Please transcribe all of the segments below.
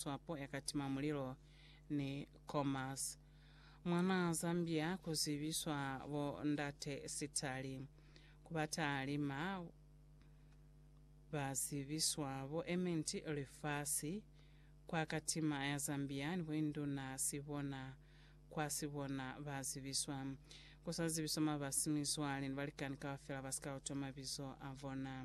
swapo ya ka tima mulilo ni Comas. Mwana Zambia ku zibiswa bo ndate sitali. Ku ba talima ba zibiswa bo ementi lifasi kwa ka tima ya Zambia ni boinduna sibona kwa sibona ba zibiswa. Ku sa zibiswa mabasi mizwale ni balikani kaufela ba si ka utwa mabizo a bona.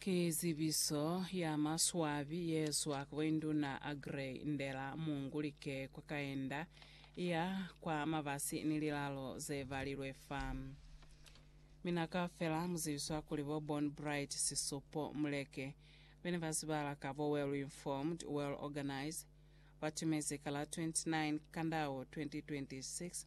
Ki zibiso ya maswabi ye zwa kwa induna Aggrey Ndela Mungulike kwa kaenda ya kwa mabasi ni lilalo ze balilwe fa. Mi na ka fela mu zibiswa kuli bo Born Bright Sisupo Muleke, be ne ba zibala ka bo Well Informed, Well Organized, ba tumezi ka la 29 Kandau 2026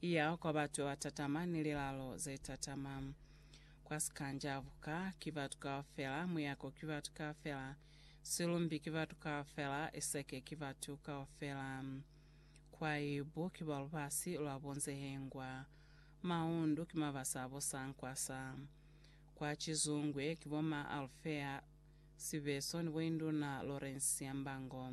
Iya kwa batu ba tatama ni lilalo ze tatama. Kwa sikanja, buka ki batu kaufela, muyako ki batu kaufela, silumbi ki batu kaufela, iseke ki batu kaufela. Kwa ibu ki ba lubasi lwa bunzehengwa. Maundu ki mabasa a bo sankwasa. Kwa cizungwe ki bo ma Alfea Sibeso ni bo Induna Lorensia Mbango.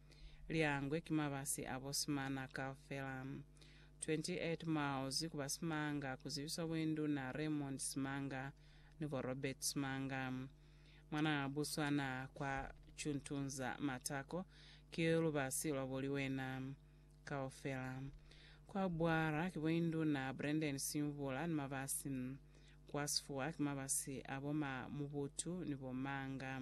li angwe ki mabasi a bosimana kaufela. 28 miles ku ba Simanga ku zibiswa Boinduna Raymond Simanga ni bo Robert Simanga. Mwanaa Buswana kwa Chuntunza Matako ki lubasi lwa bo Liwena kaufela. Kwa Bwara ki Boinduna Brandon Simvula ni mabasi. Kwa Sifuwa ki mabasi a bo Ma Mubutu ni bo Manga.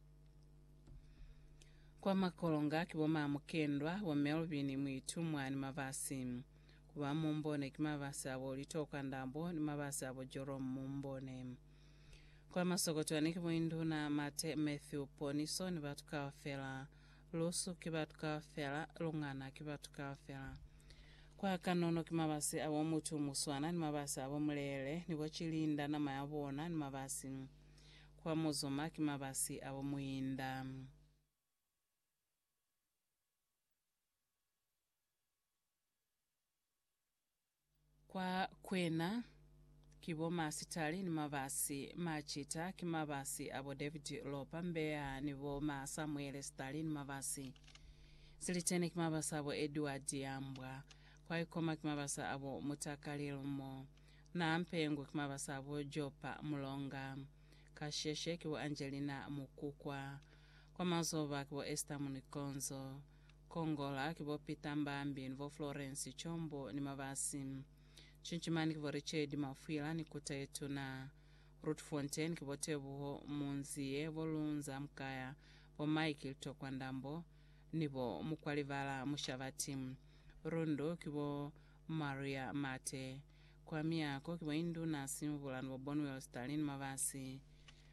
Kwa makolonga ki bo Mamukendwa, bo Melvin, Muitumwa ni Mabasi. Ku ba Mumbone ki mabasi a bo Litoka Ndambo ni mabasi a bo Jorom Mumbone. Kwa masokotwani ki bo Induna Mate, Matthew Poniso ni batu kaufela. Lusu ki batu kaufela, Lungana ki batu kaufela. Kwa kanono ki mabasi a bo Mutumuswana ni mabasi a bo Mulele ni bo Cilinda nama ya bona ni mabasi. Kwa Muzuma ki mabasi a bo muinda. Kwa kwena ki bo Masitali ni mabasi. Macita ki mabasi a bo David Lopa Mbeya ni bo ma Samuele Sitali ni mabasi. Silitene ki mabasi a bo Edward Yambwa. Kwa Ikoma ki mabasi a bo Mutakali Lmo. Na mpengwe ki mabasa a bo Jopa, Mulonga, Kasheshe, ki bo Angelina Mukukwa. Kwa mazoba ki bo Esther Munikonzo. Kongola ki bo Peter Mbambi ni bo Florence Chombo ni mabasi. Chinchimani ki bo Richard Mafwila ni Kuta ye Tuna. Roodfontein ki bo Tebuho Munzie, bo Lunza Mkaya, bo Mike Litokwandambo ni bo Mukwalibala Mushabati. Rundu ki bo Maria Mate. Kwa miako, ki bo Induna Simbula ni bo Bonwell Stalin Mabasi.